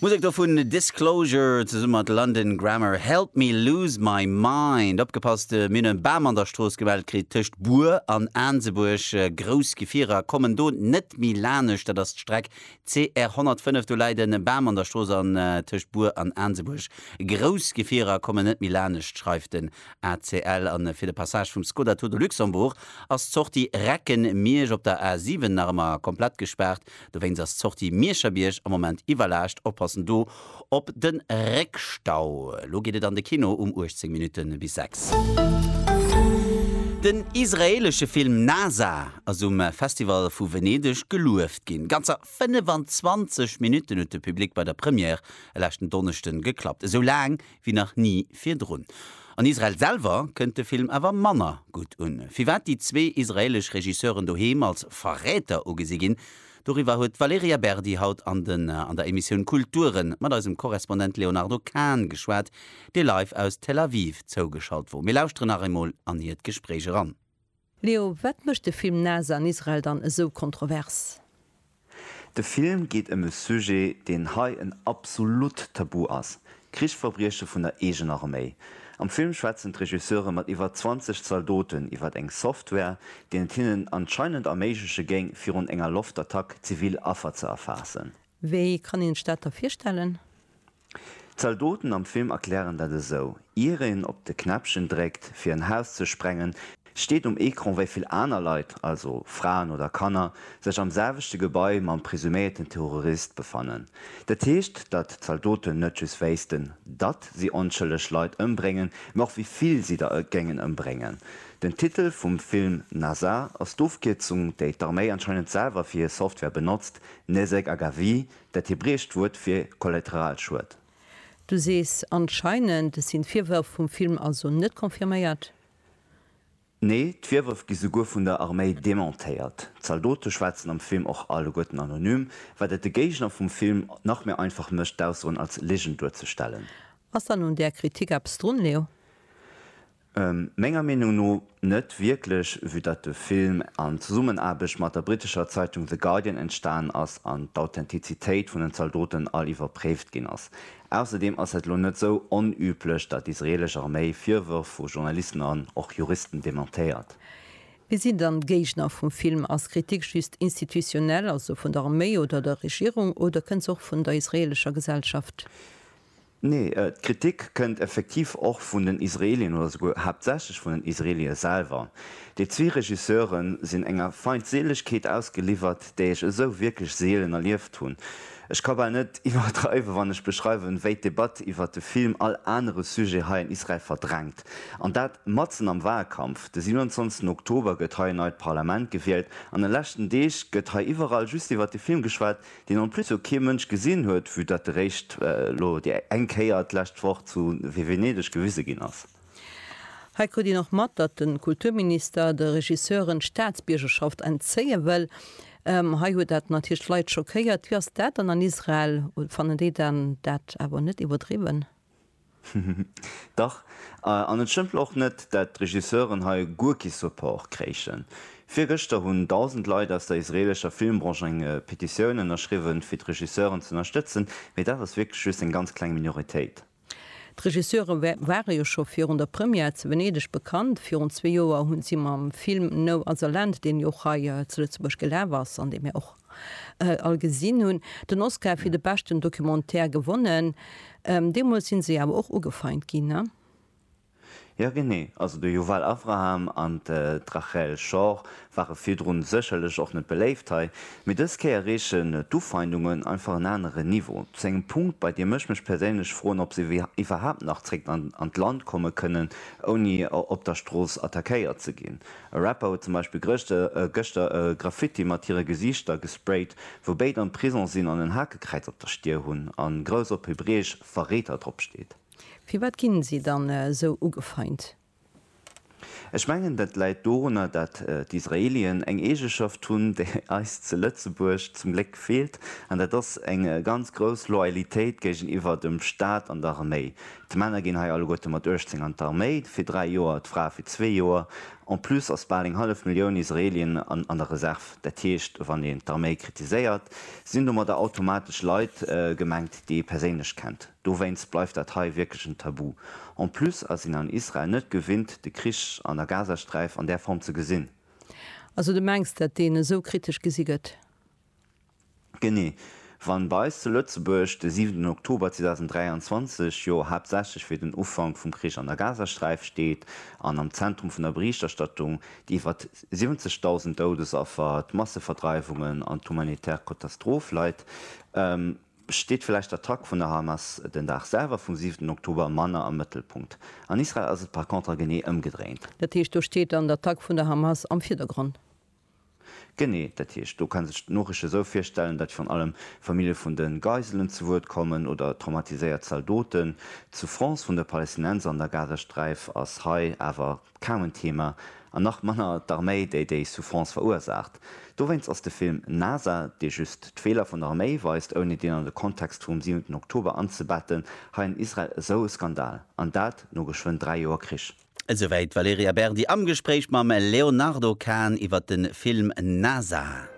D'Musek do vun Disclosure zesumme mat London Grammar, Help Me Lose My Mind. Opgepasst, mir hunn e Bam an der Strooss gemellt kritt, tëscht Bur an Aansebuerg. Grouss Gefierer kommen do net méi laanescht, dat ass d'Streck CR 105. Do läit e Bam an der Strooss an tëscht Bur an Aansebuerg. Grouss Gefierer kommen net méi laanescht, schreift den ACL. A fir de Passage vum Skoda Tour de Luxembourg ass d'Sortie Recken-Miersch op der A7 nach ëmmer komplett gespaart. Dowéinst ass d'Sortie Mierscherbierg am Moment iwwerlaascht. Oppassen do op de Réckstau. Elo geet et an de Kino um 18 Minutten bis 6. Den israeelesche Film Nasa ass um Festival vu Venedeg gelueft ginn. Ganzer 25 Minutten huet de Public bei der Première e leschten Donneschden geklappt. Esou laang wéi nach ni virdrun. An Israel selwer kënnt de Film awer manner gutt un. Firwat déi zwee israeelesch Regisseuren doheem als Verräter ugesi ginn, doriwwer huet d'Valerija Berdi haut an den an der Emissioun Kulture mat eisem Korrespondent Léonardo Kahn geschwat, dee live aus Tel Aviv zougeschalt wor. Mir lauschteren nach eemol an hiert Gespréich eran. Leo, wat mécht de Film Nase an Israel dann esou kontrovers? De Film geet ëm e Sujet, deen hei en absolut Tabu ass, Krichsverbrieche vun der eegener Arméi. Am Film schwätzen d'Regisseure mat iwwer 20 Zaldoten iwwer eng Software, deen et hinnen anscheinend erméigleche géing, virun enger Loftattack zivil Affer ze erfaassen. Wéi kann een sech dat da virstellen? D'Zaldoten am Film erklären dat esou, Ier een op de Knäppchen dréckt, fir en Haus ze sprengen, steet um Ecran, wéi vill aner Leit, also Fraen oder Kanner, sech am selwechte Gebai mam presuméierten Terrorist befannen. Dat heescht, datt d'Zaldoten net just wéissten, datt si onschëlleg Leit ëmbréngen, mä och wéi vill si der géingen ëmbréngen. Den Titel vum Film Nasa ass d'Ofkierzung, déi d'Arméi anscheinend selwer fir hir Software benotzt, Nezek Agavi, Dat hebräescht Wuert fir Kollateralschued. Du sees anscheinend, et sinn d'Virwërf vum Film also net confirméiert? Nee, d'Virwërf gi souguer vun der Arméi dementéiert. D'Zaldote schwätzen am Film och alleguerten anonym, wat et de Géigner vum Film nach méi einfach mécht, d'Aussoen als Ligen duerzestellen. Ass dann un där Kritik eppes drun, Leo? Menger Meenung no net wierklech, vue datt de Film an Zesummenaarbecht mat der brittescher Zeitung The Guardian entstanen ass an d'Authentizitéit vun den Zaldoten all iwwerpréift ginn ass. Ausserdeem ass et elo net esou onüblech, datt d'israelesch Arméi Virwërf vu Journalisten an och Juristen dementéiert. Wie sinn dann d'Géigner vum Film? Ass Kritik just institutionell, also vun der Arméi oder der Regierung, oder kënnt se och vun der israelescher Gesellschaft? Nee, d'Kritik kënnt effektiv och vun den Israelien oder souguer haaptsächlech vun den Israelie selwer. Déi zwee Regisseure sinn enger Feindseelegkeet ausgeliwwert, déi ech esou wierklech seelen erlieft hunn. Ech ka bal net iwwerdreiwen, wann ech beschreiwen, wéi d'Debatt iwwert de Film all anere Sujet hei an Israel verdrängt. An dat matzen am Wahlkampf. De 27 Oktober gëtt hei en neit Parlament gewielt, an den leschten Deeg gëtt hei iwwerall just iwwert de Film geschwat, deen en plus och kee Mënsch gesinn huet, vue dat eréischt elo déi eng Kéier d'lescht Woch zu Venedeg gewise ginn ass. Hei krut een och mat, datt de Kulturminister de Regisseuren d'Staatsbiergerschaft entzéie wëll. Hei huet dat natierlech d'Leit schockéiert. Wéi ass dat dann an Israel? Fannen déi dat awer net iwwerdriwwen? Dach, an et stëmmt och net, dat d'Regisseuren hei guer kee Support kréichen. Virgëschter hunn dausend Leit aus der israelescher Filmbranche eng Petitioun ënnerschriwwen, fir d'Regisseuren z'ënnerstëtzen, mee dat ass wierklech just eng ganz kleng Minoritéit. D'Regisseure ware jo scho virun der Première zu Venedeg bekannt. Virun zwee Joer hu si mam Film No Other Land, deen jo och hei zu Lëtzebuerg gelaf ass an dee mir och all gesinn hunn, den Oscar fir de beschten Documentaire gewonnen. Deemools si se awer och ugefeint ginn. Jo genee, also de Yuval Avraham an d'Rachel Schor ware virdrun sécherlech och net beléift hei, mee dës Kéier reechen d'Ufeindungen einfach en anere Niveau, zu engem Punkt, bei deem ech mech perséinlech froen, ob se iwwerhaapt nach zréck an d'Land komme kënnen, ouni op der Strooss attackéiert ze ginn. E Rapper huet zum Beispill gëschter e Graffiti mat hire Gesiichter gesprayt, wou béid am Prison sinn, an en Hakekräiz op der Stier hunn a grouss op Hebräesch Verreeter drop steet. Firwat ginn si dann esou ugefeint? Ech mengen dat läit dorunner dat d'Israelien eng Eegeschaft hunn déi eis zu Lëtzebuerg zum Gléck feelt, an dat ass eng ganz grouss Loyalitéit géigeniwwer dem Staat an der Arméi. D'Männer ginn hei alleguerte mat 18 an d'Arméi, fir dräi Joer, d'Frae fir zwee Joer. En plus ass bal eng hallef Millioun Israelien an der Reserv. Dat heescht, wann een d'Arméi kritiséiert, sinn domadder automatesch Leit gemengt, déi ee perséinlech kennt. Dowéinst bleift dat hei wierklech en Tabu. En plus ass een an Israel net gewinnt, de Krich an der Gazasträif an där Form ze gesinn. Also du mengs, dat deen esou kritesch gesi gëtt? Genee, wann bei eis zu Lëtzebuerg de siwenten Oktober 2023 jo haaptsächlech fir den Ufank vum Krich an der Gazasträif steet an am Zentrum vun der Berichterstattung déi iwwer 70.000 Doudesaffer, d'Masseverdreiwungen an d'humanitär Kotastroph leit, steet vläicht d'Attack vun der Hamas den Dag selwer vum siwenten Oktober manner am Mëttelpunkt. An Israel ass et par contre genee ëmgedréint. Dat heescht, do steet dann d'Attack vun der Hamas am Virdergrond. Genee, dat heescht, do ka sech d'Noricht esou virstellen, datt virun allem Famillje vun de Geiselen zu Wuert kommen oder traumatiséiert Zaldoten. D'Souffrance vun de Palästinenser an der Gazasträif ass hei awer kaum en Thema, an nach manner d'Arméi, déi déi Souffrance verursaacht. Dowéinst ass de Film NASA, dee just d'Feeler vun der Arméi weist, ouni deen an de Kontext vum siwenten Oktober anzebetten, hei an Israel esou e Skandal, an dat no geschwënn dräi Joer Krich. Esouwäit d'Valerija Berdi am Gespréich mam Leonardo Kahn iwwer de Film Nazar.